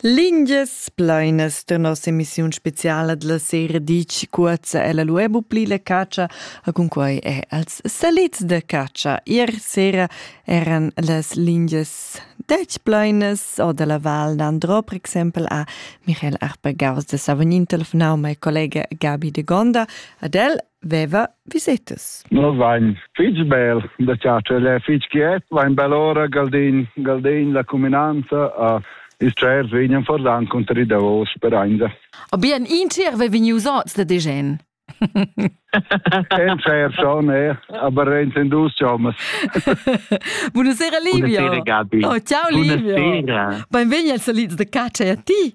Lingias plainas da nossa emissiun speciala della sera ditg cuorza ella lu bu pli la catscha a cun quei è als salits da catscha. Ier sera eran las lingias detg plainas o dalla Val d'Andro, per exempel a Michael Arper Gaus de Savognin telefonau mei collega Gabi de Gonda ad el veva visetas. No vain fich bel da chatscher, el è fich quiet, vain bel ora Galdin, Galdin la cuminanza a ils tschers vegnan fordan conter i davos per ainda. A bien intier ve vegnius ots da degen. En fair schon, eh? aber renten dus chommas. Buonasera Livio. Buonasera Gabi. Oh, ciao Livio. Buonasera. Benvegni als salids de caccia a ti.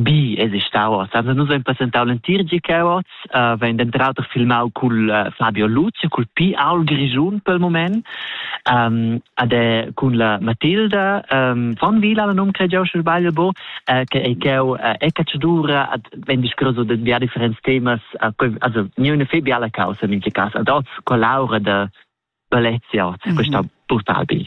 Bi es stau oz. Also nus hain presentau l'entir GK oz, uh, vegn denter auter filmau cul uh, Fabio Lucio, cul Pi Aul Grischun pel moment, um, ad è cun la Matilda um, von Vila, la num cregiau sche sbagl bo, uh, che ei cheu uh, e cacciadura ad vegn discurso de via differents temas, uh, also niune fe biala causa in quei cas ad oz collaura de Balezia oz, mm -hmm. questa brutal bi.